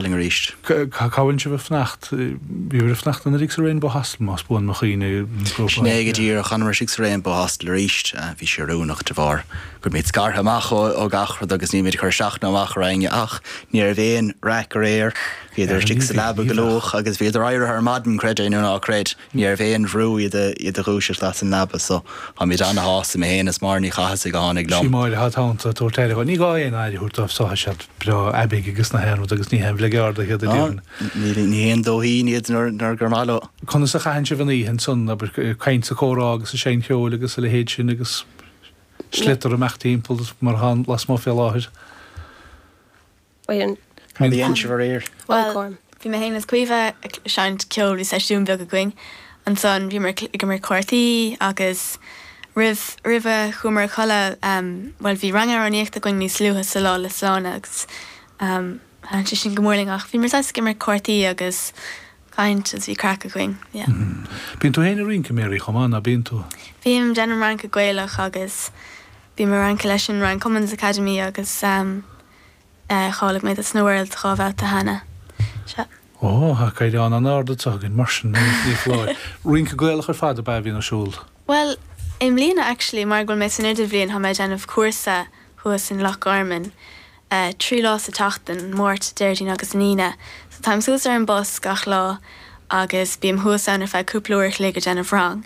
Aisling arís. Cá bhfuil sibh ag fanacht? Bhí muid ag fanacht anuraidh sa Rainbow Hostel más buan mo chuimhne. Sin é go díreach. Tá muid istigh sa Rainbow Hostel arís. Bhí sé oiriúnach de bharr go raibh muid scartha amach ó gach rud agus níl muid ag cur isteach ná amach ar éinne ach ní raibh aon raic aréir. Bhíodar istigh sa leaba go luath agus bhíodar éirithe ar maidin, creid é nó ná creid. Níorbh aon bhrú é iad a dhúiseacht as an leaba so táimid ana-shásta, mé féin is Máire Ní Chathasaigh a tháinig liom. Sí Máire atá id theannta ag tabhairt aire dhóibh. Ní gá aon aire a thabhairt dóibh so, tá siad breá aibigh agus na haon rud agus ní haon bhligeardaithe iad i dtaobh na. Níl ní haon dóithín iad nuair gur maith leo. Conas a chaitheann sibh an oíche ansan, abair, caint is comhrá agus ag seinnm cheoil agus a leithéid sin agus sliotar amach timpeall mar atá lasmuigh fé láthair? Bhí Aontaobh aréir. Bhuel, bhí mé féin is Caoimhe ag seinnt ceoil, bhí seisiún beag againn. Ansan bhíomar ag imirt cártaí agus roimh, roimh a chuamar a chodladh. Bhuel, bhí rang amhránaíochta againn níos luaithe sa lá le Sláine agus thaitin sé sin go mór linn ach bhíomar saghas ag imirt cártaí agus caint agus bhí craic againn, yeah. Bíonn tú féin ag rince, Mary, chomh maith, ná bíonn tú? Bím, déanaim rince Gaelach agus bím ag rince leis an Ryan Cummins Academy agus. cháiligh mé dos na Worlds dhá bhabhta cheana. Sea. Ó, tá caighdeán an-ard anseo againn mar sin ní foláir. Rince Gaelach ar fad ab ea a bhíonn ar siúl? Bhuel, i mbliana actually, mar go bhfuil mé san Idirbhliain, tá mé ag déanamh cúrsa thuas in Loch Garman, trí lá sa tseachtain, Máirt, Déardaoin agus an Aoine. So táim suas ar an bus gach lá agus bím thuas ann ar feadh cúpla uair a chloig ag déanamh rang.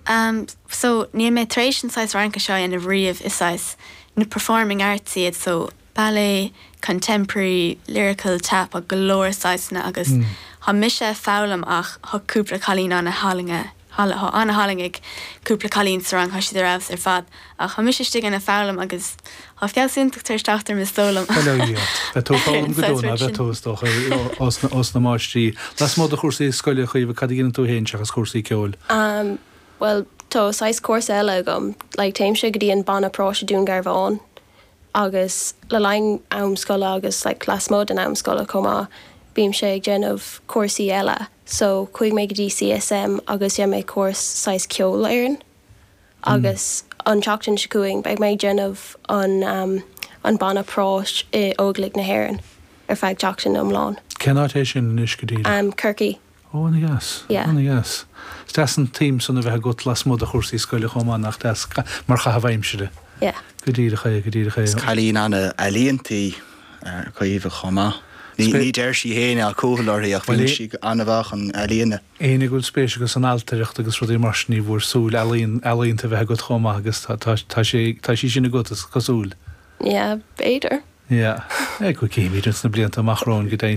Am so níl mé tar éis an saghas rince seo a dhéanamh riamh, is saghas, you know, performing arts iad so ballet, contemporary, lyrical, tap agus go leor saghasanna agus tá mise a' foghlaim ach tá cúpla cailín ana-thallann, ana-thallann ag cúpla cailín sa rang, tá siad ar fheabhas ar fad. Ach tá mise istigh ann ag foghlaim agus tá feabhsúchán tar éis teacht orm is dóigh liom. Bail ó Dhia ort. Beidh tú ag foghlaim go deo, ná beidh tú, is dócha, ós na máistrí. Lasmuigh de chúrsaí scoile, a Chaoimhe, cad a dhéanann tú féin seachas cúrsaí ceoil? Bhuel, tá saghas cúrsa eile agam. Like, téimse go dtí an banna práis i Dún Garbhán agus le linn am scoile agus like lasmuigh den am scoile chomh maith, bímse ag déanamh cúrsaí eile. So, chuaigh mé go dtí CSM agus dhein mé cúrsa saghas ceolfhoireann. agus an tseachtain seo chugainn beidh mé ag déanamh an an banna práis i Óglaigh na hÉireann ar feadh seachtain iomlán. Cén áit é sin anois go díreach? Corcaigh. Ó, ana dheas, Yeah. ana dheas. Is deas an t-aidhm san a bheith agat lasmuigh de chúrsaí scoile chomh maith, nach deas? Mar chaitheamh aimsire. Yeah. Go díreach é, go díreach é. Is cailín an-ealaíonta í Caoimhe chomh maith. Ní deir sí féin é, tá cúthail uirthi ach bíonn sí an-mhaith chun ealaíne. Éinne a bhfuil spéis acu san ailtireacht agus rudaí mar sin ní foláir súil ealaíon ealaíonta a bheith agat chomh maith agus tá tá tá sé tá sí sin agat is cosúil. Yeah b'fhéidir. Yeah. Agus cífimid ins na blianta amach romhainn go deimhin.